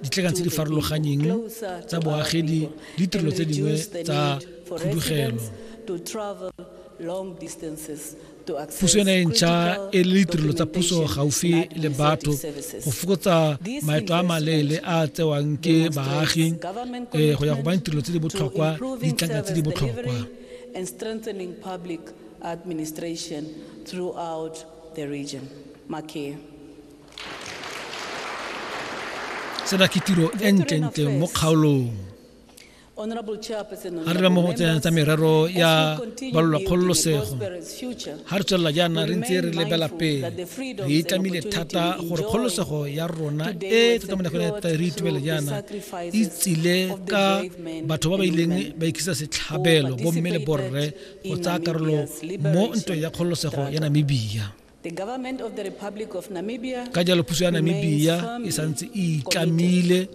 ditlekan tse di farologanyeng tsa boagedi le ditirelo tse dingwe tsa khudugelo puso ena e ntšha e le ditirelo tsa puso gaufi le batho go fokotsa maeto a maleele a tsewang ke baagi eh, go ya go bana ditirelo tse di botlhokwa ditlanka tse di botlhokwa administration throughout the region. Makia. sena ke tiro e ntlentle mo kgaolong ga re mo go tsena tsa merero ya balola kgololosego ga re tswelela jaana re ntse re lebela pele re itlamile thata gore kgololosego ya rona e tota mo nakong ya re itumele jaana e tsile ka batho ba ba ileng ba ikisa setlhabelo bomme le borre go tsaya karolo mo ntweng ya kgololosego ya namibia ka jalo puso ya namibia e santse e itlamile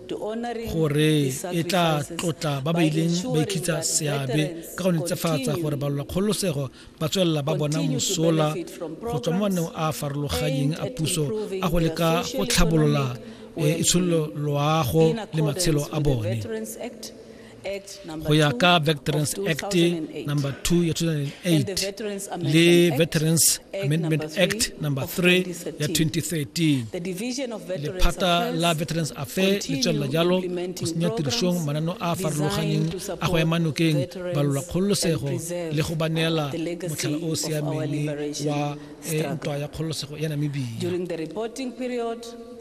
gore e tla tlotla ba ba ileng ba ikhitsa seabe ka go netsefatsa gore balola kgololosego ba tswelela ba bona mosola go tswa mo maneng a a farologanyeng a puso a go leka go tlhabolola eh, itshololo loago le matshelo a bone go ya ka veterans act number 2 ya 2008 le veterans amendment act number 3 ya 2013 lephata la veterans affair le tswelela jalo go senya tirišong manano a a farologaneng a go ema nokeng balola kgololosego le go ba neela motlhala o o siameng wa eh, ntwa ya kgololosego ya namibia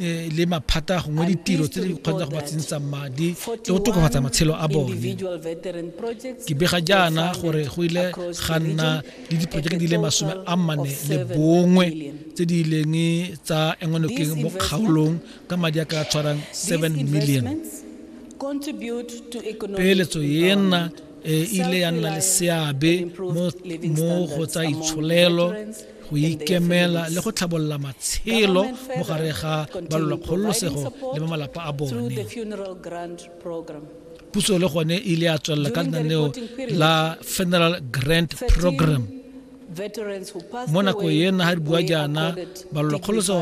eh, le maphata gongwe ditiro tse di kgonang go ba tsentsang madi le go tokafatsa matshelo a bone ke bega jaana gore go ile ga nna le diporojeke di le masome a mane le bongwe tse di ileng tsa engwanokeng mo kgaolong ka madi a ka tshwarang 7 million peeletso ena e ile ya nna le seabe mo go tsa itsholelo go ikemela le go tlhabolola matshelo mo gare ga balolakgololosego le ba malapa a bone puso le gone e ile ya tswelela ka lenaneo la funeral grant program mo nako e nna ga re bua jaana balolakgoloso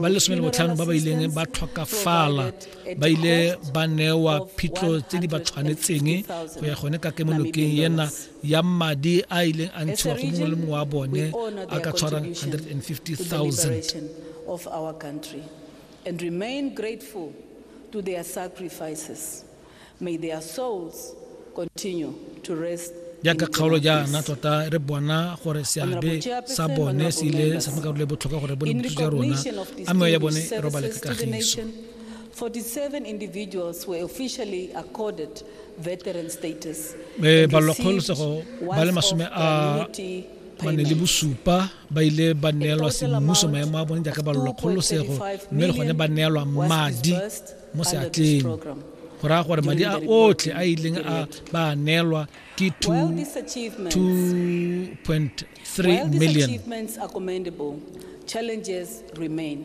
ba le some le botlhano ba ba ileng ba tlhokafala ba ile ba newa phitlho tse di ba tshwanetseng go ya gone ka kemonokeng ena ya madi a ileng a ntshiwa go mongwe le mongwe wa bone a ka tshwarang 150,000 and remain grateful to their sacrifices may their souls continue to rest jaaka kgaolo jaana tota re bona gore seabe sa bone se ile sa makarolo e botlhokwa gore bone bothuso ja rona a mewa ya bone e robale ka kagiso 47 individuals were officially accorded eh, balwakgolosego ba le masome a mane le bosupa ba ile ba neelwa semmuso maemo a bone jaaka balolakgolosego mme le gone ba neelwa madi mo seatleng go raya gore madi a otlhe a ileng a ba neelwa ke 2.3 3 While these million achievements are commendable, challenges remain.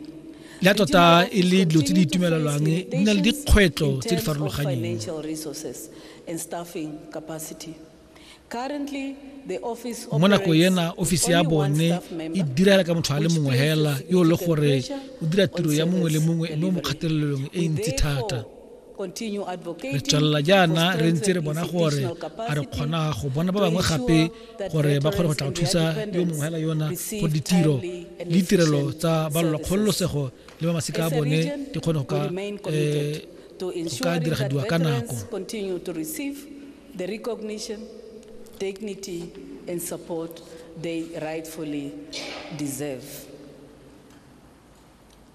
le a tota e le dilo tse di itumelelwang di na le dikgwetlho tse di farologanyeng Financial resources and staffing capacity. Currently, the office mo nako operates ena with ofisi ya only one bone staff e member, direla ka motho a le which mongwe places fela yo e le significant gore pressure o dira on tiro ya mongwe le service mongwe mme o mo delivery. kgatelelong e We ntsi thata therefore re tswelela jaana re ntse re bona gore a re kgona go bona ba bangwe gape gore ba kgone go tla go thusa yo mongwe hela yona go ditiro le ditirelo tsa balolwa kgololosego le ba masika a bone di kgone go ka eh, go ka diragadiwa ka nako the recognition, dignity, and support they rightfully deserve.